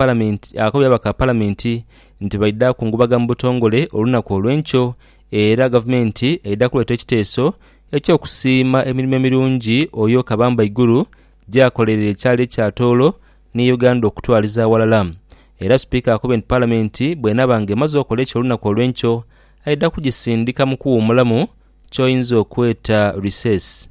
Palamenti akobye ababaka ba Palamenti nti baidha kungubaga mu butongole olunaku olw'enkyo era Gavumenti eidha kuleeta ekiteeso eky'okusiima emirimo emirungi Oyo Kabambaiguru gyakoleire ekyalo ekya Tooro ni Uganda okutwaliza aghalala era Sipiika akobye nti Palamenti bw'enaaba nga emaze okola ekyo olunaku olw'enkyo aidha kugisindika mu kuwuumulamu ky'oyinza okweta recess.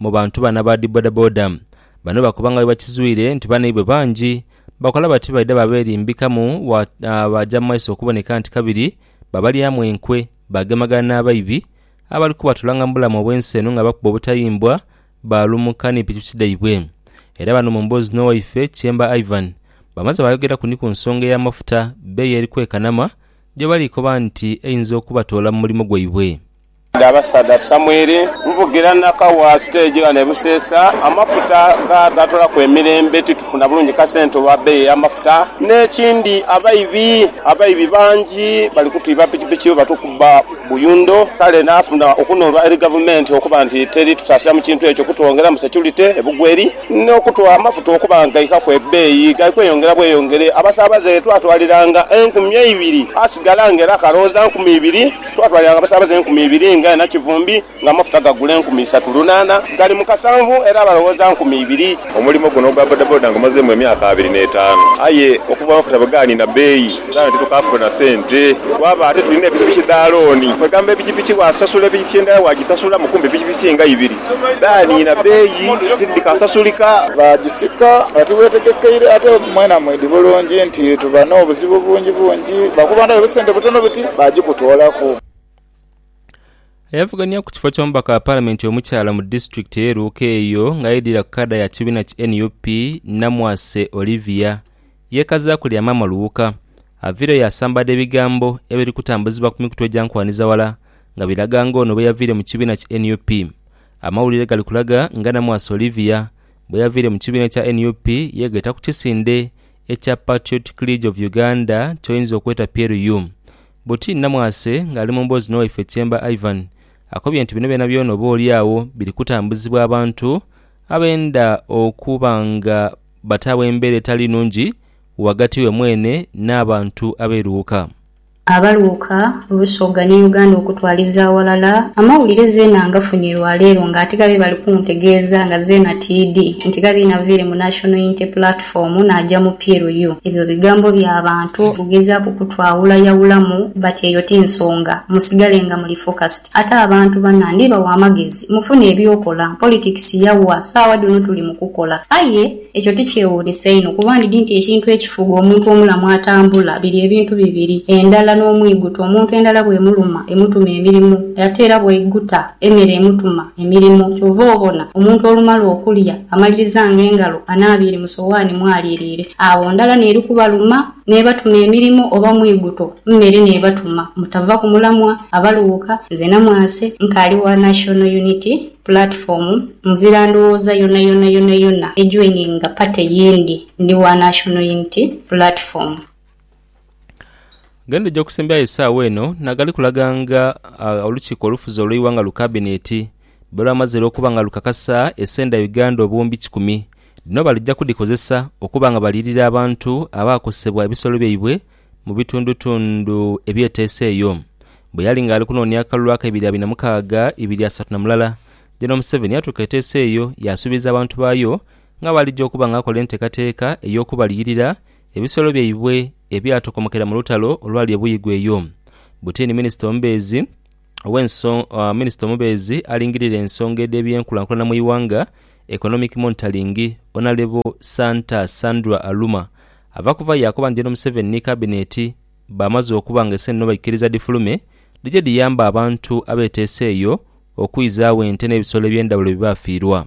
Mu bantu bano aba dhi bodaboda bano bakoba nga bwebakizwire nti banaibwe bangi bakola bati baidha baberimbikamu baaja mu maiso okuboneka nti kabiri babalyamu enkwe bagemagana n'abaibi abali kubatulanga mu bulamu obw'ensi eno nga bakuba obutayimbwa baalumuka ni pikipiki dhaibwe era bano mu mboozi n'owaife Kyemba Ivan bamaze baayogeraku ni ku nsonga ey'amafuta bbeeyi eri kwekanama gyebali koba nti eyinza okubatoola mu mulimu gwaibwe. Dh'abasaadha Samwiri, nvugira na kawa siteegi ghano e Buseesa. Amafuta gaatulaku emirembe, titufuna bulungi kasente olwa beeyi ey'amafuta. N'ekindi abaibi, abaibi bangi bali kutwiba pikipiki bwe batukubba buyundo. Kale naafuna okunhulwa eri Gavumenti okuba nti teri tutaasira mu kintu ekyo kutwongeramu securite e Bugweri, n'okutugha amafuta okuba nga gaikaku ebeeyi, gali kweyongera bweyongere. Abasaabaze ye twatwaliranga enkumi eibiri, asigala nga era kalowooza nkumi ibiri. Twatwalira gho abasaabaze enkumi ibiri nga ena kivumbi, nga amafuta gagula enkumi isatu lunaana gali mu kasanvu, era abalowooza nkumi ibiri. Omulimo guno ogwa bodaboda ngumazeemu emyaka abiri n'etaanu aye okuva amafuta bwe gaaniina bbeeyi saagha eno titukaafuna na sente. Twaba ate tulina pikipiki dha looni, kwegamba pikipiki bw'asasula pikipiki endala bw'agisasulamu kumpi pikipiki nga ibiri dhaaniina bbeeyi tidhikasasulika. Baagisika nga tibwetegekeire ate mwena mwidhi bulungi nti tuba n'obuzibu bungi bungi lwa kuba ndaba obusente butono buti. baagikutoolaku. Ayavuganya ku kifo ky'omubaka wa Palamenti omukyala mu disitulikiti ey'e Luuka eyo ng'aidhira ku kaada ya kibiina ki nup, Namwase Olivia, yeekazaaku lya Maama Luuka. Aviireyo yaasambaadha ebigambo ebiri kutambuzibwa ku mikutu egyankwaniza-wala nga biraga ng'ono bwe yaviire mu kibiina ki nup. Amawulire gali kulaga nga Namwase Olivia bwe yaviire mu kibiina ekya nup yeegheta ku kisinde ekya Patriotic League of Uganda kyoyinza okweta PLU. Buti Namwase ng'ali mu mboozi n'owaife Kyemba Ivan akobye nti bino byonabyona oba oli agho biri kutambuzibwa abantu abenda okuba nga bataagho embeera etali nungi ghagati we mwene n'abantu ab'eruuka. Abaluuka Busoga ni Uganda okutwaliza aghalala amawulire zeena ngafunye lwa leero nga ate ghabe bali kuntegeeza nga zeena tiidhi nti ghabe naviire mu National Unity Platform naaja mu PLU. Ebyo bigambo bya bantu kugezaaku kutwawula yawulamu but eyo ti nsonga. Musigale nga muli focused. Ate abantu banna ndibawa amagezi mufune eby'okola. Politics yawa, saawa dhino tuli mu kukola. Aye. Ekyo ti kyewuunhisa inho? Kuba ndidhi nti ekintu ekifuga omuntu omulamu atambula biri ebintu bibiri, endhala n'omwiguta. Omuntu endhala bw'emuluma emutuma emirimu, ate era bw'aiguta emere emutuma emirimu. Kyova obona omuntu olumala okulya amalirizanga engalo anaabiire mu sowaani mw'aliiriire, agho ndhala n'eri kubaluma n'ebatuma emirimu oba mwiguto mmere n'ebatuma. Mutava ku mulamwa abaluuka. Nze Namwase, nkaali wa National Unity. Platform nzira ndhowooza yonayona yonayona ejoininga party yindi ndi wa National Unity Platform. Gendhuja okusimbyayo esaawa eno nagali kulaga nga olukiiko olufuzi olweighanga lu kabineti bwelwamazire okuba nga lukakasa esenda Uganda obuwumbi kikumi dhino balija kudhikozesa okuba nga baliyirira abantu abaakosebwa ebisolo byaibwe mu bitundutundu ebyeteesa eyo. Bwe yali ng'ali kunoonia akalulu akaibiri abiri na mukaaga ibiri asatu na mulala, General Museveni yatuuka eteesa eyo yaasuubiza abantu baayo nga bw'alija okuba ng'akola enteekateeka ey'okubaliyirira ebisolo byaibwe ebyatokomokera mu lutalo olwali e Buyigwa eyo. Butini minisita omubeezi ow'enso minisita omubeezi alingirira ensonga edh'ebyenkulankulana mu ighanga, Economic Monitoring, Onalebo Santa Sandra Aluma Ava kuva yaakoba nti eno Museveni ni Kabineeti baamaze okuba nga eseenene baikiriza dhifulume dhije dhiyambe abantu abeeteese eyo okwizaagho ente n'ebisolo eby'endhawulo bye baafiirwa.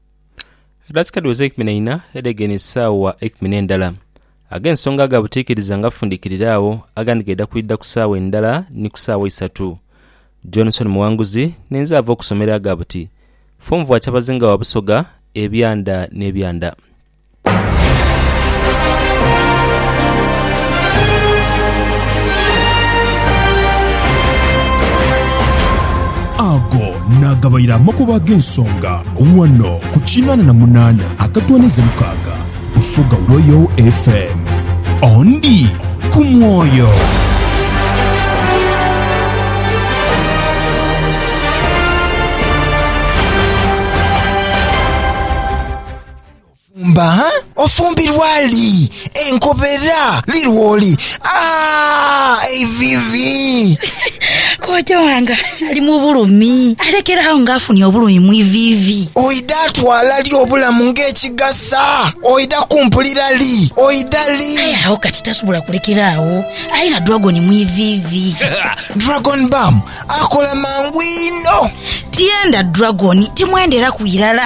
Edakika dhiweze eikumi na ina edhegeinhe esaawa eikumi n'endala. Ag'ensonga aga butiikiriza nga fundikirire agho, agandi gaidha kwidha ku saawa endala ni ku saawa isatu. Johnson Muwanguzi n'enze ava okusomero aga buti, Fomvua kyabazinga wa Busoga, ebyanda n'ebyanda. Ago naagabaire amakubo ag'ensonga ghano ku kinaana na munaana akatwaniza mukaaga Busoga Royal FM. Ondi ku mwoyo. Ofumba, ha? Ofumbirwa li? Enkobera li lwoli? Aah! Eiviivi! Kooja wange ali mu bulumi. Alekere agho nga afunye obulumi mu iviivi. Oidha twala li obulamu ng'ekigasa? Oidha kumpulira li? Oidha li? Aye agho kati tasobola kulekera agho. Ali na dragon mu iviivi. Dragon Bum akola mangu inho. Tienda dragon, timwenderaku irala.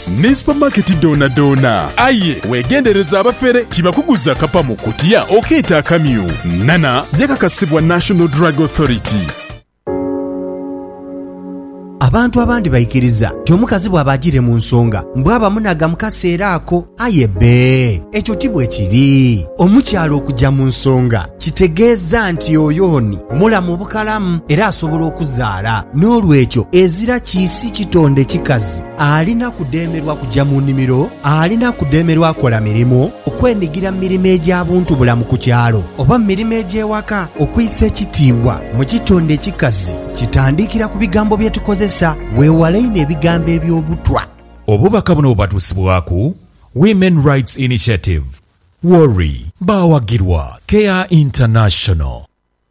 ne supamaketi dhoonadhoona. Aye weegendereze abafere tibakuguza kapa mu kutiya okeeta akamyu. Nana yakakasibwa National Drug Authority. Abantu abandi baikiriza nti omukazi bwaba ajiire mu nsonga mbu aba munagha mu kaseera ako. Aye bbe, ekyo ti bwe kiri. Omukyala okuja mu nsonga kitegeeza nti oyo ni mulamu bukalamu era asobola okuzaala. N'olwekyo ezira kiisi kitonde kikazi. Alina kudheemerwa kuja mu nimiro, alina kudheemerwa kola mirimu, okwenigira mu mirimo egya buntubulamu ku kyalo oba mu mirimo egy'ewaka. Okwisa ekitiibwa mu kitonde ekikazi kitandikira ku bigambo bye tukozesa. Weewale inho ebigambo eby'obutwa. Obubaka buno bubatuusibwaku Women Rights Initiative, WORI. Baawagirwa Care International.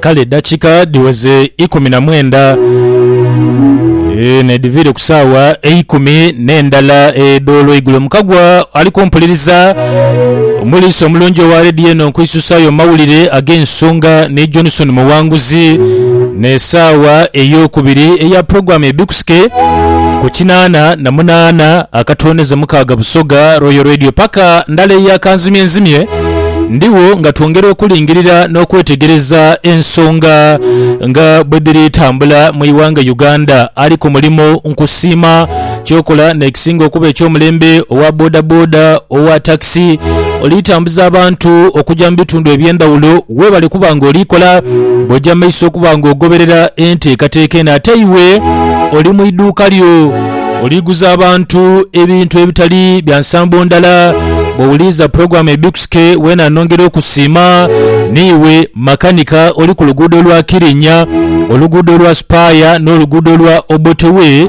Kale edakika dhiweze ikumi na mwenda nedhiviire ku saawa eikumi n'endala edh'olweigulo. Mukagwa ali kumpuliriza, omuliisa omulungi owa leediyo eno, nkwisusayo amawulire ag'ensonga ni Johnson Muwanguzi n'esaawa ey'okubiri eya pulogulaamu Ebikusita. Tusike ku kinaana na munaana akatooneze mukaaga Busoga Royal Radio paka ndala eyo akanzimye nzimye ndiwo nga twongera okulingirira n'okwetegereza ensonga nga bwe dhiri tambula mu iwanga Uganda ali ku mulimu nkusiima kyokola n'ekisinga okuba eky'omulembe owa bodaboda owa takisi Oli tambuza abantu okuja mu bitundu eby'endhawulo weebale kuba nga oli kola bw'oja mu maiso okuba nga ogoberera enteekateeka eno. Ate iwe oli mu idhuuka lyo oli guza abantu ebintu ebitali bya nsambo ndala. Bw'owuliriza pulogulaamu Ebikusike weena nongera okusiima. Ni iwe makanika oli ku luguudo lwa Kirinnya, oluguudo lwa Spire n'oluguudo lwa Obote Way,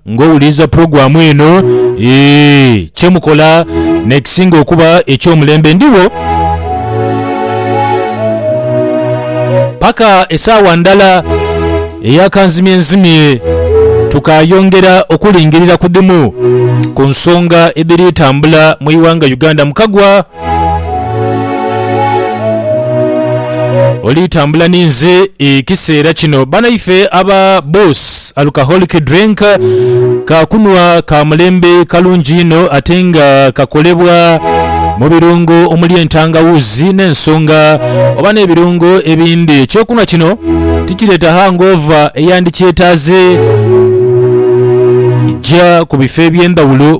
Nga owuliriza pulogulaamu eno, ee, kye mukola n'ekisinga okuba eky'omulembe, ndigho paka esaawa ndala eya kanzimyenzimye, tukaayongera okulingirira ku dhimu ku nsonga edhiri tambula mu ighanga Uganda. Mukagwa. Oli tambula ninze ekiseera kino banaife aba Boss Alcoholic Drink ka kunhwa ka mulembe kalungi inho ate nga kakolebwa mu birungo omuli entangawuuzi n'ensonga oba n'ebirungo ebindi. Ekyokunhwa kino tikireeta hangover eyandikyetaaze. Gya ku bifo eby'endhawulo.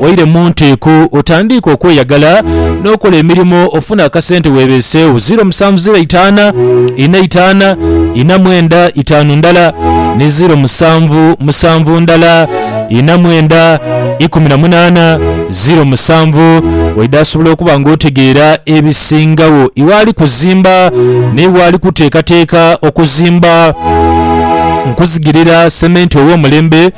Waire mu nteeko otandiike okweyagala n'okola emirimo ofune akasente weebeeseewo. Ziiro musanvu ziiro eitaana ina itaana ina mwenda itaanu ndala ni ziiro musanvu musanvu ndala ina mwenda ikumi na munaana ziiro musanvu. Waidha asobola okuba nga otegeera ebisingagho iwe ali kuzimba n'iwe ali kuteekateeka okuzimba. Nkuzigirira sementi ow'omulembe.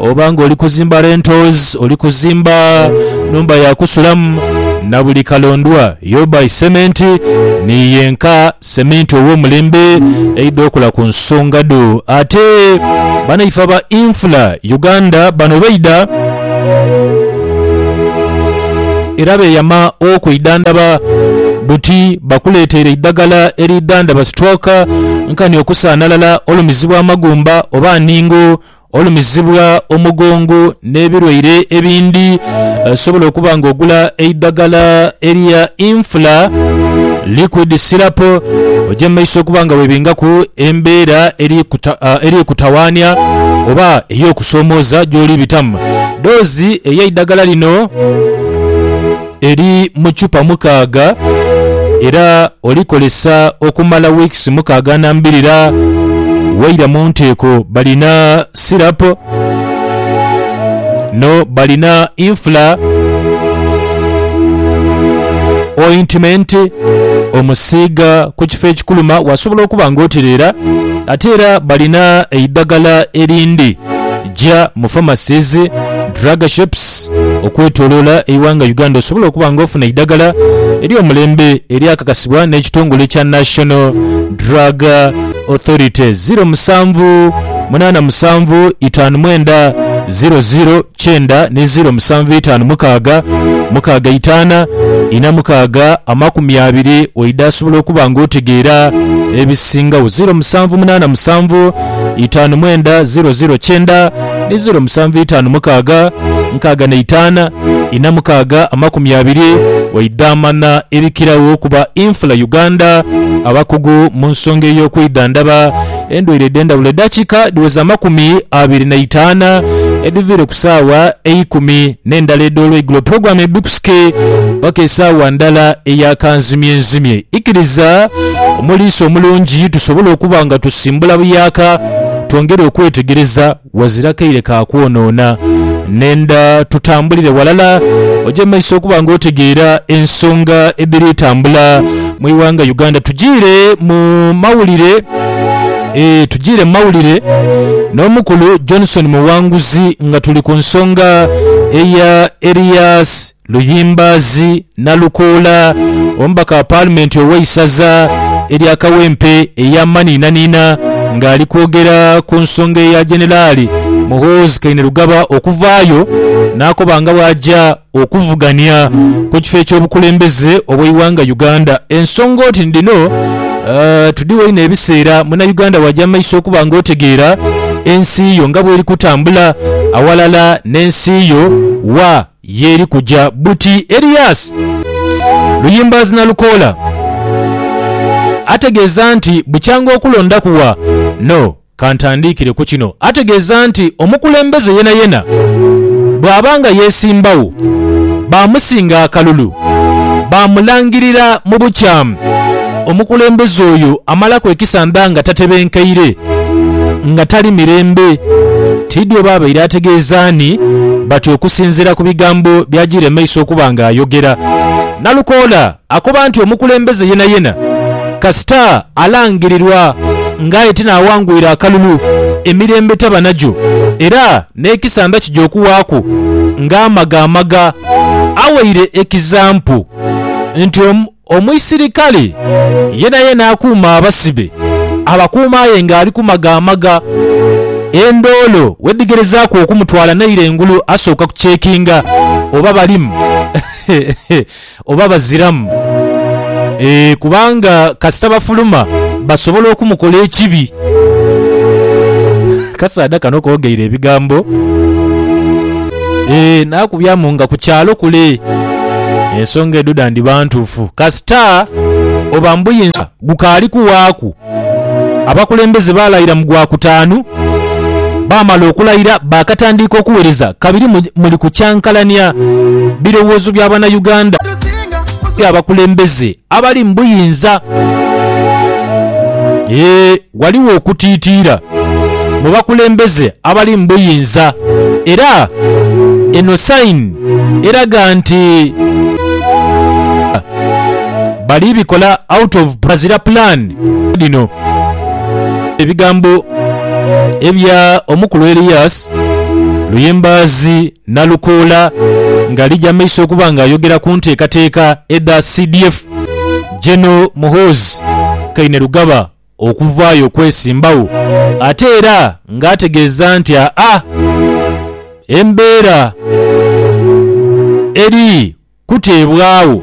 Oba ng'oli kuzimba rentals, oli kuzimba nhumba ya kusulamu, na buli kalondwa you buy cement, ni yenka seminti ow'omulembe aidha okola ku nsonga dho. Ate banaife aba Infra Uganda bano baidha era beeyama okwidhandhaba buti bakuleeteire eidhagala eriidhandhaba stroke, nkani okusaanalala, olumizibwa amagumba oba ningo Olumizibwa omugongo n'ebilwaire ebindhi, osobola okuba nga ogula eidhagala erya Infla Liquid Syrup oje mu maiso okuba nga webingaku embeera eri kutawaania oba ey'okusoomooza gy'oli bitamu. Doozi ey'eidhagala lino. eri mu chupa mukaaga era olikozesa okumala wiikisi mukaaga na mbirira. Waira mu nteeko balina sirapu no balina infula, ointimenti omusiiga ku kifo ekikuluma wasobola okuba nga otereera. Ate era balina eidhagala erindi. gya mu pharmacies, drug shops okwetolola eighanga Uganda osobole okuba nga ofuna eidagala eryomulembe eryakakasibwa n'ekitongole ekya National Drug Authority, ziro musanvu munaana musanvu itaanu mwenda ziro ziro kyenda ni ziro musanvu itaanu mukaaga mukaaga itaana ina mukaaga amakumi abiri waidha asobola okuba nga otegeera ebisingagho ziro musanvu munaana musanvu itaanu mwenda ziro ziro kyenda ni ziro musanvu itaanu mukaaga nkaaga na itaana ina mukaaga amakumi abiri waidhamana ebikiragho okuba infula Uganda abakugu mu nsonga ey'okwidhandhaba endwaire edh'endhawulo edhakika dhiweza amakumi abiri na itaana edhiviire ku saawa eikumi n'endala edh'olweigulo pulogulaamu ebikusike paka esaawa ndala eya kanzimyenzimye ikiriza Omuliisa omulungi tusobola okuba nga tusimbula buyaaka twongere okwetegereza wazira kaire ka kwonoona. Nenda tutambulire walala oje mu maiso okuba nga otegeera ensonga edhiri tambula mu ighanga Uganda. Tujiire mu mawulire Eeh tujiire mu mawulire n'omukulu Johnson Muwanguzi nga tuli ku nsonga eya Erias Luyimbaazi Nalukoola, omubaka wa Paalimenti ow'eisaza erya Kawempe ey'amanhiinanhiina ng'ali kwogera ku nsonga eya Jeneraali Muhoozi Kainerugaba okuvaayo n'akoba nga bw'aja okuvugania ku kifo eky'obukulembeze obw'eighanga Uganda. Ensonga oti ni dhino, Tudhigho inho ebiseera Munauganda w'aja mu maiso okuba nga otegeera ensi yo nga bw'eri kutambula aghalala n'ensi yo wa? Ye eri kuja buti Elias? Luyimbaazi Nalukoola ategeeza nti bukyanga okulondaku wa no kantandiikire ku kino ategeeza nti omukulembeze yenayena bwaba nga yesimbawo bamusinga akalulu bamulangirira mu bukyamu omukulembeze oyo amalaku ekisanda nga tatebenkeire nga tali mirembe. Tiidhi oba abaire ategeeza ani, bati okusinziira ku bigambo bya Giremeiso okuba nga ayogera, Nalukoola akoba nti omukulembeze yenayena kasita alangirirwa nga aye tinaawangwire akalulu, emirembe taba nagyo era n'ekisanda kija okuwaaku nga amagamaga. Aweire ekizampu nti. Omuisirikale yenayena akuuma abasibe abakuuma aye nga ali kumagamaga. Endoolo wedhigerezaaku okumutwala naire engulu asooka kucekinga oba balimu oba baziramu kubanga kasita bafuluma basobola okumukola ekibi. Akasaadha kano koogeire ebigambo. Ee, naakubyamu nga ku kyalo kule. Ensonga edho dhandhiba ntuufu kasita oba mbuyinza gukaali kuwaaku. Abakulembeze baalayira mu Gwakutaanu. Baamala okulayira baakatandiika okuwereza kabiri muli kukyankalania birowoozo bya Banauganda eri abakulembeze abali mu buyinza. Ee. Ghaligho okutiitiira mu bakulembeze abali mu buyinza era eno sayini eraga nti bali bikola out of bazira plan dhino. Ebigambo ebya omukulu Elias Luyimbazi Nalukoola nga ali jamaiso okuba nga ayogera ku nteekateeka edha CDF General Muhoozi Kainerugaba. okuvaayo okwesimbagho ate era nga ategeeza nti aa embeera eri kuteebwagho.